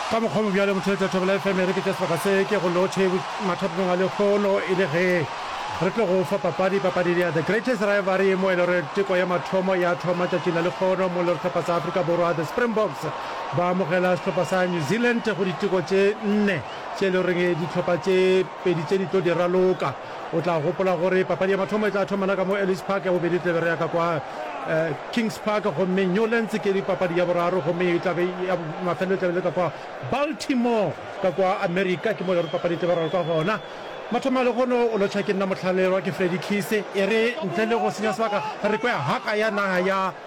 Ka mokgwa o mo bjalo, motho yo tla thobela efemere ke tša sebaka se ke go lotšhe mathatong a lehono e le ge re tlo go fa papadi papadi ya The Greatest Rivalry mo e le gore teko ya mathomo ya thoma tšatšing la lehono mo e le gore hlopha sa Afrika Borwa The Springboks ba amogela sehlopha sa New Zealand go diteko tše nne tše e le goreng dihlopha tše pedi tše di tlo di raloka. O tla gopola gore papadi ya mathomo e tla thomela ka mo Ellis Park, ya bobedi e tlabe re ya ka kwa Kings Park, gomme Newlands ke papadi ya boraro, gomme e tlabe ya mafelelo e tlabe e le ka kwa Baltimore ka kwa America, ke mo e le gore papadi e tlabe ralwa kwa gona. Mathomo a lehono o lotšha ke nna Mohlalelwa, ke Freddy Khise, e re ntle le go senya sebaka re kwe haka ya naga ya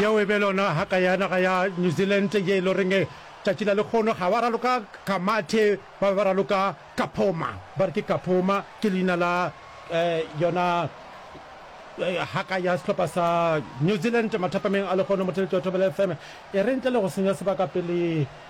Yeo e be lona haka ya naga ya New Zealand ye e lo reng tšatši la lekgono ga wa raloka ka mathe ba be ba raloka ka phoma ba re ke ka phoma ke leina la yona haka ya sehlopha sa New Zealand mathapameng a lekgono mothelete wa thobela fm e re ntle le go senya sebaka pele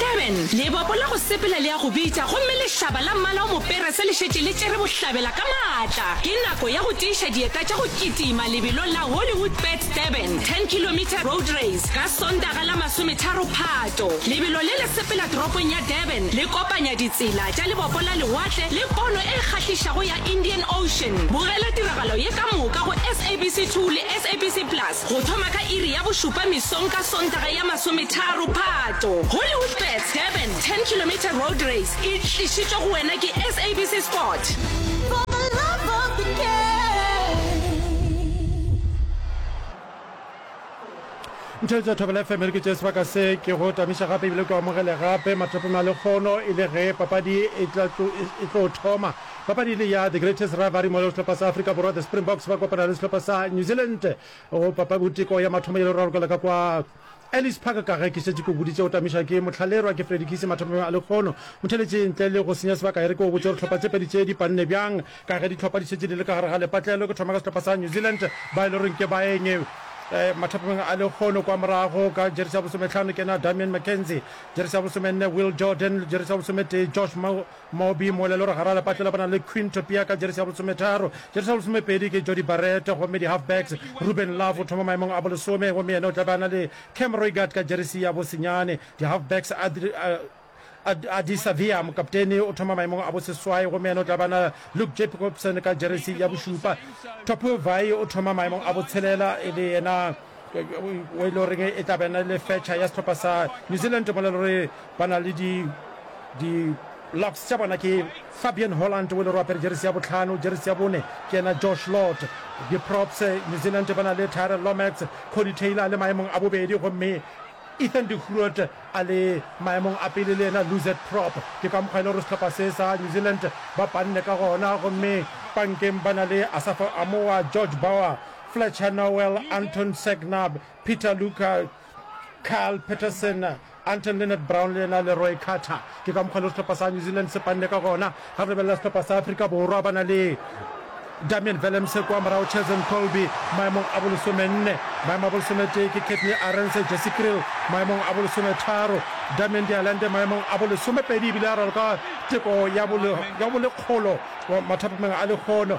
Durban, lebopo la go sepela le ya go bitša gomme lešaba la mmala o moperese le šetše le tšere bohlabela ka maatla. Ke nako ya go tiiša dieta tša go kitima lebelong la Hollywoodbets Durban 10 kilometre road race ka Sontaga la masometharo Phato. Lebelo le le sepela toropong ya Durban le kopanya ditsela tša lebopo la lewatle le pono e kgahlišago ya Indian Ocean. Bogela tiragalo ye ka moka go SABC 2 le SABC Plus. Go thoma ka iri ya bošupa mesong ka Sontaga ya masometharo Phato, Hollywoodbets Durban 10 Kilometre Road Race e tlišitšwe go wena ke SABC Sport. Ntšheng tša Thobela FM re ke tše sebaka se ke go tamiša gape ebile ke o amogele gape mathapong a lekgono e le ge papadi e tlo thoma. Papadi e le ya The Greatest Rivalry mo le sehlopha sa Afrika Borwa The Springboks ba kopana le sehlopha sa New Zealand go papaboteko ya mathomo ye le rarokela ka kwa Ellis Park ka ge ke šetše ke o boditše o tamišwa ke Motlhalerwa ke Freddy Kisi mathomong a lekgono motheletše ntle le go senya sebaka e re ke o botše gore hlopha tše pedi tše di panne bjang ka ge dihlopha di šetše di le ka gare ga lepatlelo ke thoma ka sehlopha sa New Zealand ba e le goreng ke baeng mathapomeng a lekgono kwa morago ka jeresi ya bosometlhano ke na Damian McKenzie jeresi ya bosomenne Will Jordan jeresi ya bosometee Josh Moby, mo lelore gare a lepatlelo ba na le Quinn Topia ka jeresi ya bolesometharo, jeresi ya bolesomepedi ke Jody Barrett gomme di-halfbacks Ruben Love o thoma maemong a bolesome gomme yena o tla be a na le Cam Roigard ka jeresi ya bosenyane, di-halfbacks Ardie Savea mokaptene o thoma maemong a boseswai gomme yena o tla be a na Luke Jacobson ka jeresi ya bošupa, Topio Vaa'i o thoma maemong a botshelela e le yena wo e le goreng e tla bena le fetšha ya setlhopha sa new zealand mo le gore ba na le di di locks tša bona ke fabian holland wo e le gore apere jeresi ya botlhano jeresi ya bone ke ena josh lord di-props new zealand ba na le tyrel lomax cody taylor a le maemong a bobedi gomme ethan decruet a le maemong a pele le ena luzet prop ke ka mokgwa e le gore setlhopha se sa new zealand ba panne ka gona gomme pankeng ba na le asafo amoa george bower Fletcher Noel, Anton Segnab, Peter Luca, Kyle Peterson, Anton Leonard Brown le yena Leroy Carter. Ke ka mokgwa le sehlopha sa New Zealand se panne ka gona ga re lebelela sehlopha sa Afrika Borwa ba na le Damian Velemse kwa morago, Cheslin Kolbe maemong a bolesomenne, maemo a bolesometee ke Katley Arendse, Jesse Kriel maemong a bolesometharo, Damian Dialande maemong a bolesomepedi ebile a raloka teko ya bolekgolo mathapameng a lehono.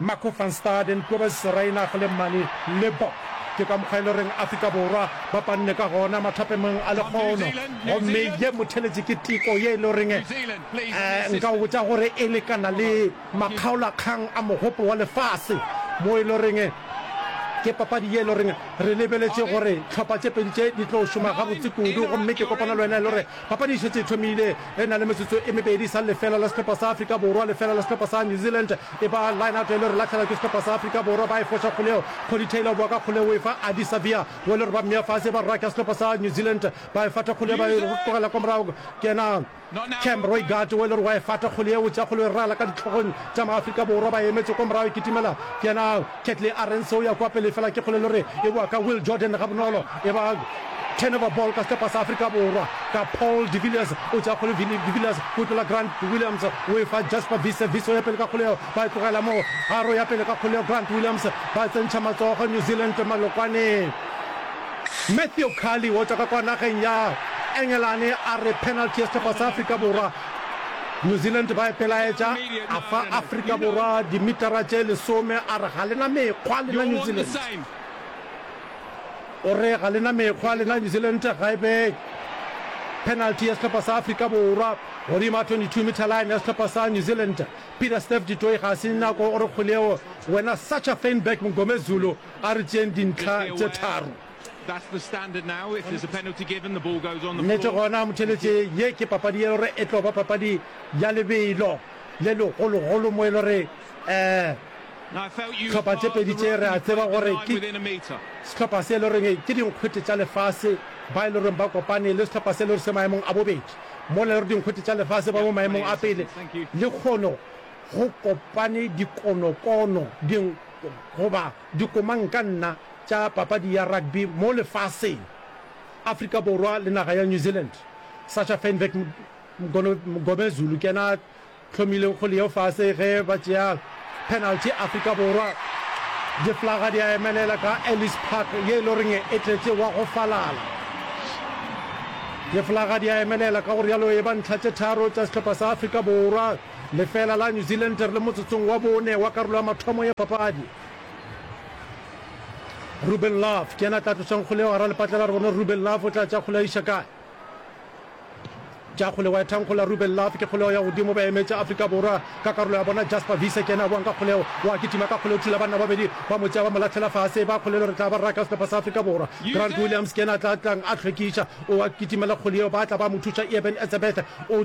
Marco van Staden, Kobus Reinach le Manie Libbok. Ke ka mokgwa e le goreng Afrika Borwa ba panne ka gona mathapemong a lekgono. Gomme ye motheletši ke teko ye e le goreng, nka go botša gore e lekana le makgaolakgang a Mogopo wa Lefase, mo e le goreng ke papadi ye e le goreng re lebeletše gore tlhopha tše pedi tše di tlo šoma gabotse kudu. Gomme ke kopana le wena e le gore Papadi e šetše e thomile re na le metsotso e mebedi sa lefela la sehlopha sa Afrika Borwa lefela la sehlopha sa New Zealand. E ba line-out e le re latlhelwa ke sehlopha sa Afrika Borwa, ba e foša kgoleo. Cody Taylor o boa ka kgoleo o e fa Ardie Savea wo le re ba mmea fase, e ba raka sehlopha sa New Zealand ba e fata kgoleo ba e tlogela kwa morago. Ke yena Cam Roigard wo e le re wa e fata kgoleo o tšea kgoleo e rala ka ditlhogong tša ma Afrika Borwa ba e emetše kwa morago e kitimela ke yena Ketley a reng seo ya kwa pele fela ke kgolelo re e boa ka Will Jordan gabonolo e ba turnover ball ka setepa sa Afrika Borwa ka Paul de Villiers o tšea kgole Vili de Villiers o e tlola Grant Williams o e fa Jasper Wiese Wiese o ya pele ka kgole yeo ba e tlogela mo Haro ya pele ka kgole yeo Grant Williams ba tsentšha matsogo New Zealand malokwaneng Matthew Khali o tšwa ka kwa nageng ya Engelane a re penalty ya setepa sa Afrika Borwa New Zealand ba ipelaetša, a fa Afrika Borwa dimitara tše lesome, a re ga le na mekgwa lena New Zealand. O re ga le na mekgwa lena New Zealand, ga e be penalty ya sehlopha sa Afrika Borwa godimo a 22 meter line ya sehlopha sa New Zealand. Peter Steph du Toit ga se nako o re kgoleo wena Sacha Feinberg Mngomezulu a re tšeeng dintlha tše tharo. Nnete gona motheletše, ye ke papadi e lo re e tlo ba papadi ya lebelo le legologolo mo e lo re hlopha tše pedi tše re a tseba gore ke sehlopha se e lo reng ke dinkgwete tša lefase ba e lo reng ba kopane le sehlopha se e lo re se maemong a bobedi mola e lo re dinkgwete tša lefase ba mo maemong a pele le kgono go kopane dikonokono ding goba Dikomankanna tša papadi ya rugby mo lefaseng, Afrika Borwa le naga ya New Zealand, Sasha Feinwerk Mngomezulu ke yena a hlomileng kgole yeo fase ge ba tšea penalty. Afrika Borwa diflaga di a emelela ka Ellis Park ye e le goreng e tletše wa go falala. Diflaga di a emelela ka go realo e ba ntlha tše tharo tša sehlopha sa Afrika Borwa. Lefeela la New Zealand re le motsotsong wa bone wa karolo ya mathomo ya papadi. Ruben Love ke yena a tla tlosang kgole eo gara lepatlela re bone Ruben Love o tla tša kgole a iša kae. Tša kgole wa ethankgola Ruben Love ke kgoleo ya godimo ba emetša Afrika Borwa ka karolo ya bona Jasper Wiese ke yena a boang ka kgoleo wa kitima ka kgoleo thula banna babedi ba mo tšea ba mo latlhela fase ba kgolelo re tla ba raka sehlopha sa Afrika Borwa. Grant Williams ke yena a tla tlang a hlwekiša o a kitimela kgole eo ba tla ba mo thuša Eben Etzebeth o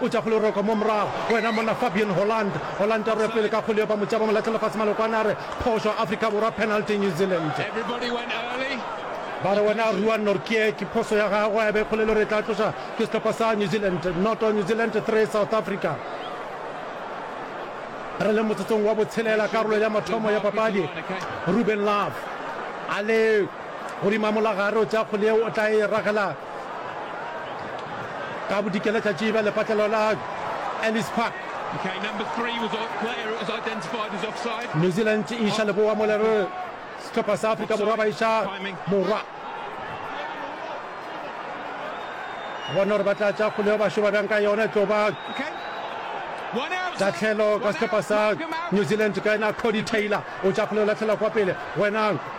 O tšwa go leroko mo morago. Wena monna Fabian Holland. Holland a rue pele ka kgole yo ba mo tšaba mo lahle lefase malokwane a re, Phošo, Afrika Borwa, penalty New Zealand. Ba re wena rua Nortje ke phoso ya gagwe a be kgole le re e tla tloša ke sehlopha sa New Zealand. Noto New Zealand three South Africa. Re le motsotsong wa botshelela karolo ya mathomo ya papadi. Ruben Love a le godimo a molagare o tšea kgole yeo o tla e ragela ka bodikela tša tšiba lepatlelo la Ellis Park. Okay, number three was a player that was identified as offside. New Zealand e iša leboa mo lerere sehlopha sa Afrika Borwa ba iša morwa. Bona gore ba tla tša kgole yo bašo ba bjang ka yona e tlo ba tatlhelo ka sehlopha sa New Zealand ka ena Cody Taylor o tša kgole o latlhela kwa pele wenang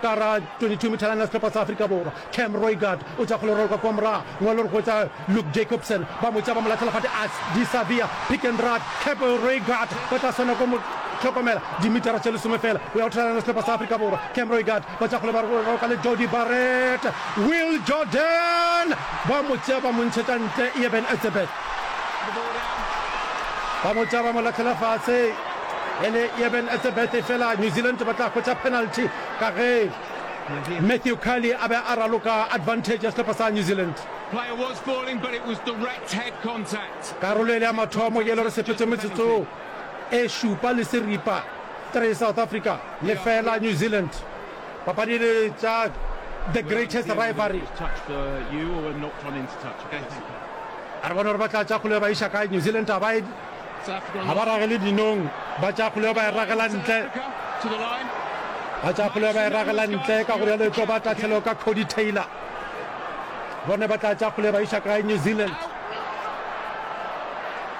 Ka ra 22 methalana sehlopha sa Afrika Borwa, Cam Roigard o tša kgolorolo ka kua morago, mo e lego go tša Luke Jacobson, ba mo tšea ba mo lathela fate as di sa bea pick and run. Cap Roigard ba tla swanela ko mo hlokomela dimetara tše lesome fela go ya go thalana sehlopha sa Afrika Borwa, Cam Roigard ba tša kgole ba roka le Jody Barrett, Will Jordan ba mo tšea ba mo ntšhetša ntle, Eben Etzebeth. ba botša ba mo latlhela fatshe e le yeben etsebete fela new zealand ba tla hwetša penalty ka ge matthew carley a be a raloka advantage ya sehlopha sa new zealand karolo e le ya mathomo yelo re sepetse metsotso e šupa le seripa 3 south africa lefela new zealand Papadi le tša The Greatest Rivalry. A re bone gore ba tla tša kgoleo ba iša kae. New Zealand a ba e ga ba ragele dinong ba tša kgoleo ba e ragela ntle ba tša kgoleo ba e ragela ntle ka gore yalo e tlo ba tatlhelo ka Cody Taylor bone ba tla tša kgoleo ba iša kae New Zealand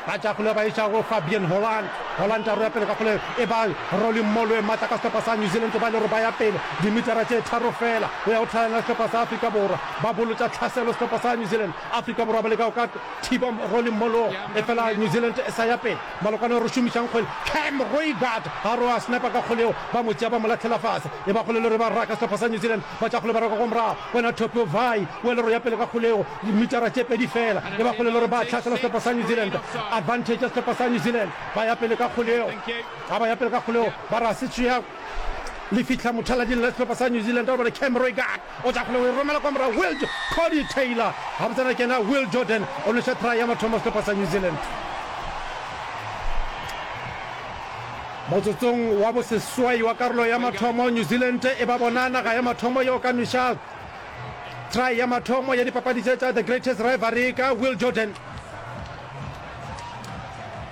Ba tšea kgoleo ba e iša go Fabian Holland. Holland a roya pele ka kgoleo e ba Rolly Mmolo e matla ka sehlopha sa New Zealand go ba e le gore ba ya pele dimitara tše tharo feela go ya go tlhalana le sehlopha sa Afrika Borwa. Ba bolotša tlhaselo sehlopha sa New Zealand. Afrika Borwa ba leka go ka thiba Rolly Mmolo efela New Zealand e sa ya pele. Malokwane o re šomišang kgwele Cam Roigard a roya sniper ka kgoleo ba mo tšea ba mo lahlela fase. E ba kgolelo re ba raka sehlopha sa New Zealand ba tšea kgoleo ba raka kwa morago wena Topi Ovai o e le roya pele ka kgoleo. Dimitara tše pedi feela e ba kgolelo gore ba tlhasela sehlopha sa New Zealand. Advantage ya sehlopha sa New Zealand, ba ya pele ka kgoleo, ga ba ya pele ka kgoleo, ba re ga se tšea le fihla mothalading la sehlopha sa New Zealand, gobane Cam Roigard o tša kgoleo, o e romela kwa morago, Will Cody Taylor gabotsana ke ena, Will Jordan o nweša try ya mathomo sehlopha sa New Zealand. Motsotsong wa boseswai wa karolo ya mathomo, New Zealand e ba bona naga ya mathomo yeo ka nwešago. Try ya mathomo ya dipapadi tše tša The Greatest Rivalry ka Will Jordan.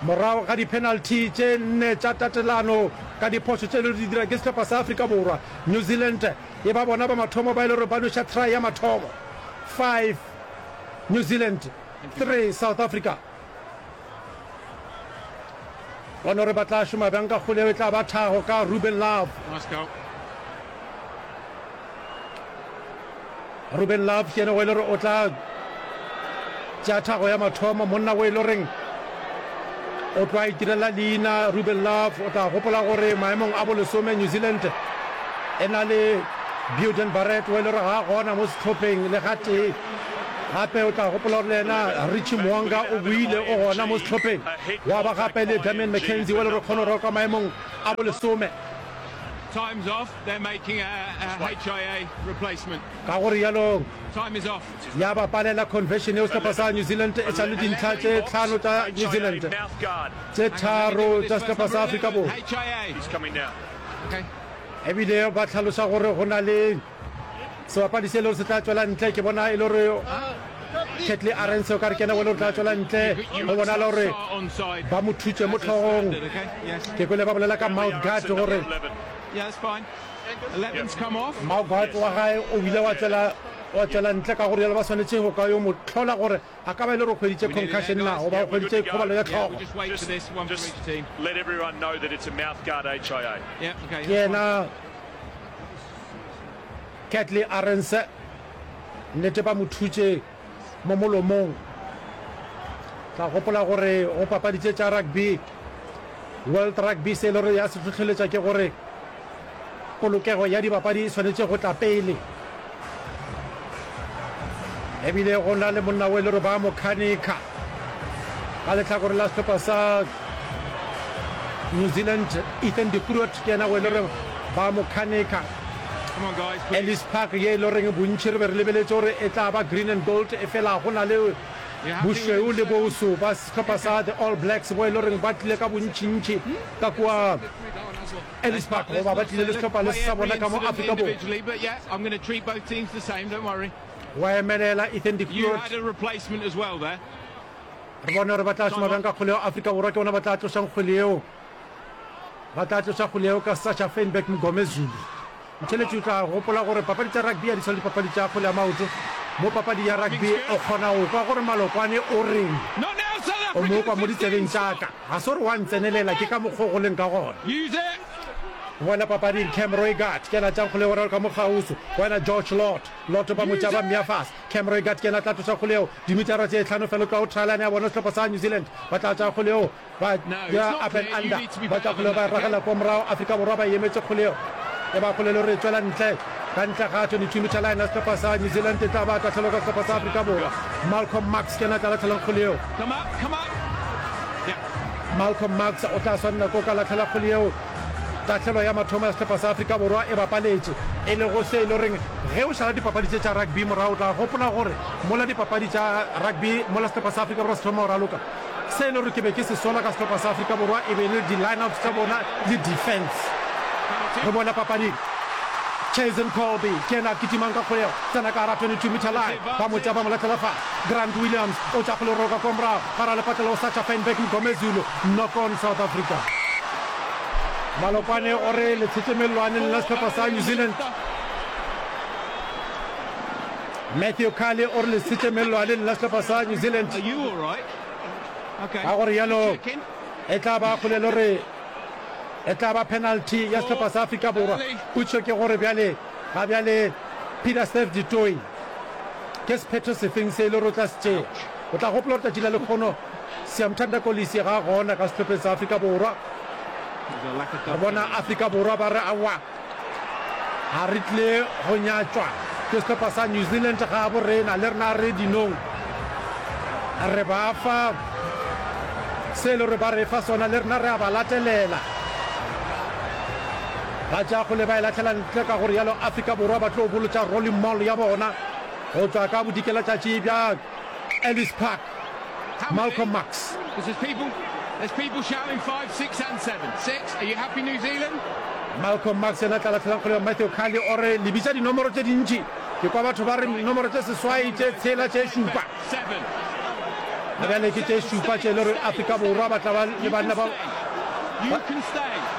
Morago ga dipenalty tše nne tša tatelano ka diphošo tše le di dira ke sehlopha sa Afrika Borwa, New Zealand e ba bona ba mathomo ba e le gore ba nweša try ya mathomo. Five New Zealand, three South Africa. Bona gore ba tla šoma bjang ka kgoleo e tla ba thago ka Ruben Love. Ruben Love ke ene go e le gore o tla tšea thago ya mathomo monna o e le goreng o tloa itirela leina ruben love o tla gopola gore maemong a bolesome new zealand e na le buden barret o e le gore ga gona mo setlhopheng le ga tee Gape o tla gopola gore le yena Richie Mo'unga o boile o gona mo sehlopheng, gwa ba gape le Damian McKenzie wa Lerekgone o roka maemong a bolesome. Ka go rialo ya ba palela conversion yeo sehlopha sa New Zealand e sa le dintlha tše tlhano tša New Zealand, tše tharo tša sehlopha sa Afrika Borwa. Ebile ba hlalosa gore go na le sebapadi se lore se tla tšwela ntle ke bona e le gore ketley arense o ka re kena wele o tla tšwela ntle go bona le gore ba mo thutse mo tlhogong ke kwele ba bolela ka mouth guard gore mouth guard wa gae o bile wa tšwela ntle ka gore yalo ba swanetše go ka yo mo tlhola gore A ka ba e le gore o hweditše concussion na goba o hweditše khobalo ya hlogo. Ke yena Catley Arendse, nnete ba mo thutše mo molomong. Tla gopola gore go papaditše tša rugby, World Rugby, se e le gore ya se tlhotlheletša ke gore Polokego ya dibapadi e swanetše go tla pele. E bile go na le monna o e le gore ba mo khanika ka lehlakore la sehlopha sa New Zealand, Ethan de Groot ke yena o e le gore ba mo khanika. Ellis Park ye e le goreng bontši re be re lebeletse gore e tla ba green and gold e fela go na le bošweu le boso ba sehlopha sa the All Blacks bo e le goreng ba tlile ka bontšintši ka kua Ellisburg goba ba tlile le sehlopha le sa bona ka mo Afrika Borwa. Wa emelela Ethan de Groot. Re bone gore ba tla šoma bjang ka kgole eo Afrika Borwa ke bona ba tla tlošang kgole eo. Ba tla tloša kgole eo ka Sasha Feinberg Mngomezulu. Motheeletši o tla gopola gore papadi tša rugby ga di swane le dipapadi tša kgwele ya maoto. Mo papadi ya rugby o kgona go kwa gore Malokwane o reng, o mo kwa mo ditsebeng tša ka. Ga se gore wa ntsenelela, ke ka mokgwa o go leng ka gona. Go boela papading, Cam Roigard ke yena a tšang kgole yeo go raloka ka mo kgauswi go yena George Lotto. Lotto ba mo tšea ba mmea fase. Cam Roigard ke yena a tla tloša kgole yeo dimitara tše hlano fela o tloga go trial line ya bona sehlopha sa New Zealand. Ba tla tšaya kgole yeo Ba dira up and under, ba tšwa kgoleo ba ragela kwa morago, Afrika Borwa ba emetše kgoleo e ba kgolelo gore e tšwela ntle ka ntle ga 22 meter line ya sehlopha sa New Zealand e tla ba tahlelo ka sehlopha sa Afrika Borwa. Malcolm Marx ke yena a tla latlhelang kgoleo. Malcolm Marx o tla swanela ko ka latlhela kgoleo. Tahlelo ya mathomo ya sehlopha sa Afrika Borwa e bapaletše e lego se e le goreng ge o šala dipapadi tše tša rugby morago o tla gopola gore mola dipapadi tša rugby mola sehlopha sa Afrika Borwa se thoma go raloka Se e le gore ke be ke se sola ka sehlopha sa Afrika Borwa e be e le di-lineups tsa bona le defense. Re bone papading Chazen Kolbe ke ena a kitimang ka kgolego, tsena ka gara 22 meter line, ba mo tšea ba mo letlela fa. Grant Williams o tša kgole roka kwa morago, gare a lepatlela o Sacha Feinberg Mngomezulu, knock on South Africa. Malokwane o re letshetemelelwaneng la sehlopha sa New Zealand. Matthew Khale o re lesitše mellwaneng la sehlopha sa New Zealand, ka go rialo e tla ba kgole le gore e tla ba penalty ya sehlopha sa Afrika Borwa. Putšo ke gore bjale ga bjale Peter Steph du Toit ke sephetho sefeng se e le gore o tla se tšea. O tla gopola gore tšatši la lekgono Siyamthanda Kolisi ga a gona ka sehlopheng sa Afrika Borwa, re bona Afrika Borwa ba re aowa. A re tle go nyatšwa ke sehlopha sa New Zealand gabo rena le rena re dinong re ba fa se le gore ba re fa sona le rena re a ba latelela ba tša go le ba e latlhela ntle ka gore yalo Afrika Borwa ba tlo bolotša rolling mall ya bona go tswa ka bodikelatšatši bja Ellis Park Malcolm Marx. Malcolm Marx yena tla latlhelang kgole ya Matthew Kali o re lebitsa dinomoro tse dintši ke kwa batho ba re nomoro tse seswai tše tshela tše šupa a bjale ke tše šupa tše le gore Afrika Borwa ba tla ba le banna ba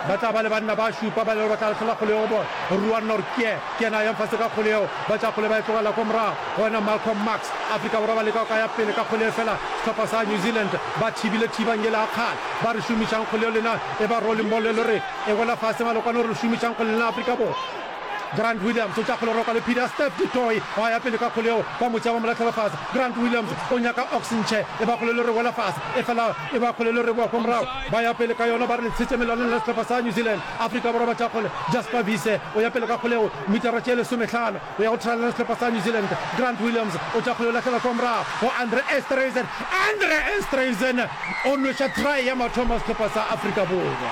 ba tla ba le banna ba šupa ba le gore ba tla latlhela kgole ya go bona Ruan Nortje Ke yena a yang fase ka kgole yeo, ba tša kgole ba e tlogela ko morago, go wena Malcolm Marx. Afrika Borwa ba leka go ka ya pele ka kgole efela sehlopha sa New Zealand ba thibile thibang yela ya kgale. Ba re šomišang kgole yeo lena e ba rolling ball e lo re e wela fase malokwane o re šomišang kgole lena Afrika Borwa. Grant Williams o tša kgole roka le phiri ya Steph du Toit gwa ya pele ka kgole yeo ba mo tšea ba mo lahlela fase. Grant Williams o nyaka oxenchair e ba kgole e lo re wela fase efela e ba kgole e lo re bowa ko morago. Ba ya pele ka yona ba re le tshetše melwaneng lena sehlopha sa New Zealand. Afrika Borwa ba tša kgole Jasper Wiese o ya pele ka kgoleo mitara tše lesomehlano go ya go thalana le sehlopha sa New Zealand. Grant Williams o tša kgole o lahlela kwa morago go Andre Esterhuizen. Andre Esterhuizen o nweša try ya mathomo sehlopha sa Afrika Borwa.